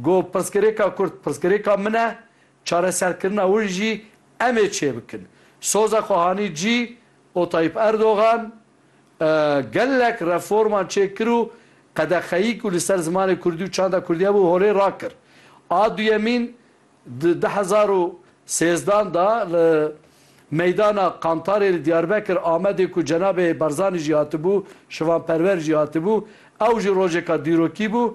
Got, Pirsgirêka Kurd pirsgirêka min e, çareserkirina win jî em ê çêbikin. Soza xwe hanî cî û Tayyîp Erdogan gelek reforman çêkir û qedexeyî ku li ser zimanê Kurdî û çanda Kurdî hebû holê rakir. A duyemîn di du hezar û sêzdan de li meydana Qantarê li Diyarbekir, Amedê ku cenabê Barzanî jî hatibû, şivanperwer jî hatibû, ew jî rojêka dîrokî bû,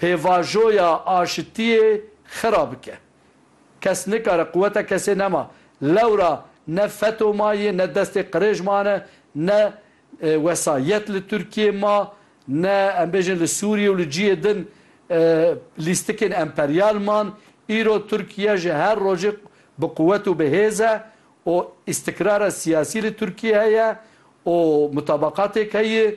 Pêvajoya aşitiyê xira bike. Kes nikare quweta kesê nema. Lewra ne feto ma yê, ne destê qirêj mane, ne wesayet li Tirkiyê ma, ne em bêjin li Sûriyê û li ciyê din lîstikên emperyal man. Îro Tirkiye ji her rojê bi quwet û bi hêz e û îstikrara siyasî li Tirkiyê heye û mutabaqatêk heye.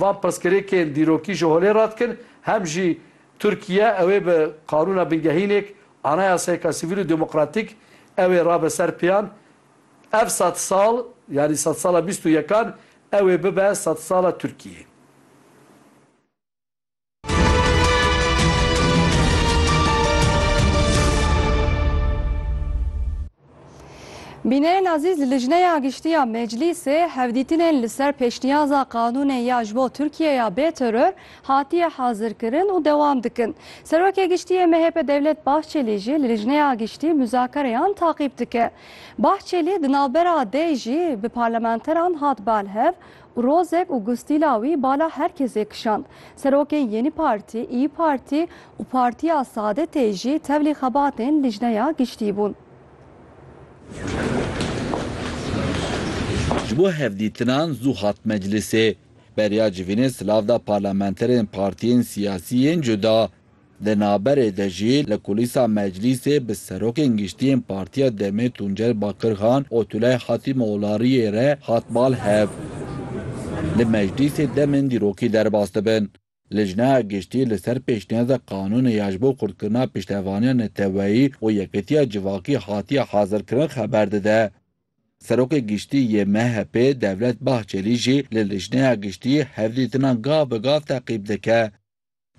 Van pirsgirêkên dîrokî ji holê re dikin, hem jî Tirkiye ew ê bi qanûna bingehînêk, anayasayeke sivîl û demokratîk ew ê rabe ser pêyan. Ev sed sal, yanî sed sala bîst û yekan ew ê bibe sed sala Tirkiyeyê. Bînerên azîz li Lijneya Giştî ya Meclîsê hevdîtinên li ser pêşniyaza qanûnê ya ji bo Tirkiyeya bê teror hatiye hazirkirin û dewam dikin. Serokê Giştî yê MHP Devlet Bahçelî jî li Lijneya Giştî muzakereyan taqîb dike. Bahçelî di navbera dê jî bi parlamenteran hat balhev Rozek û gustîla wî bala her kesê kişand. Serokên Yenî Partî, Îyi Partî û Partiya Saadetê jî tevlî xebatên Lijneya Giştî bûn. Ji bo hevdîtinan zû hat meclîsê. Beriya civînê silav da parlamenterên partiyên siyasî yên cuda. Di naberê de jî li kulîsa meclîsê bi serokên giştiyên Partiya DEM'ê Tuncel Bakirxan û Tulay Hatîmoğlariyê re hat bal hev li meclîsê demên dîrokî derbas dibin. Lijneya Giştî li ser pêşniyazê qanûnê ya ji bo xurtkirina piştevaniya neteweyî û yekitiya civakî hatiye hazirkirin xeber dide. Serokê Giştî yê MHP'ê Devlet Bahçelî jî li Lijneya Giştî hevdîtinan gav bi gav teqîb dike.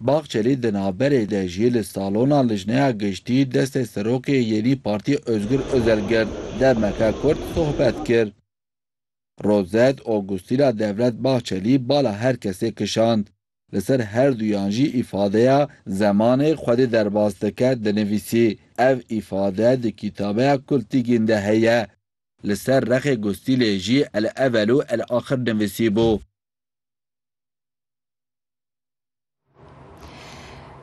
Bahçelî di navberê de jî li salona Lijneya Giştî destê Serokê Yenî Partî Ozgur Ozel girt, demeke kurt sohbet kir. Rozet Ogustîna Devlet Bahçelî bala her kesê kişand. Li ser her duyan jî îfadeya Zemanê Xwedê derbas dike dinivîsî. Ev îfade di kîtabeya Kultigîn de heye. Li ser rexê Gustîlê jî El Evel û El Axir nivîsîbû.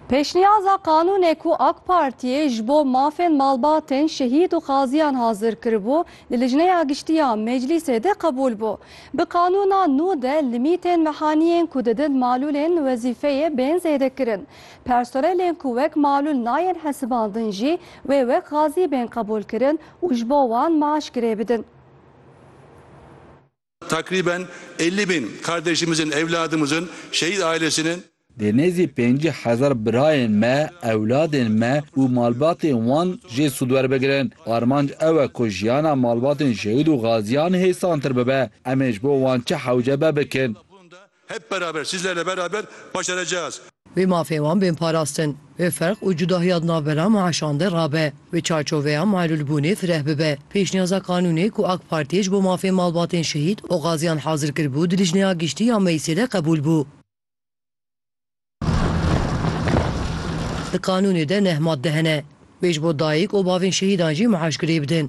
Pêşniyaza qanûnê ku AK Partiyê ji bo mafên malbatên şehîd û qaziyan hazir kiribû, li Lijneya Giştî ya Meclîsê de qebûl bû. Bi qanûna nû de limîtên mehaniyên ku didin malûlên wezîfeyê bên zêdekirin. Personelên ku wek malûl nayên hesibandin jî wê wek qazî bên qebûlkirin û ji bo wan maaş girêbidin. Takrîben ellî bin kardêşimizin, ewladimizin, şehîd ailesinin. Dê nêzî pêncî hezar birayên me, ewladên me û malbatên wan jê sûd werbigirin. Armanc ew e ku jiyana malbatên şehîd û gaziyan hêsantir bibe. Em ê ji bo wan çi hewce be bikin. Hep beraber, siz lele beraber başaracağız. Wê mafê wan bên parastin, wê ferq û cudahiya di nav bera meşan de rabe, wê çarçoveya meelûlbûnê fireh bibe. Pêşniyaza qanûnê ku AK Partiyê ji bo mafên malbatên şehîd û gaziyan hazir kiribû di Lijneya Giştî ya Meclîsê de qebûl bû. Di qanûnê de neh madde hene wê ji bo dayik û bavên şehîdan jî meaş girêbidin.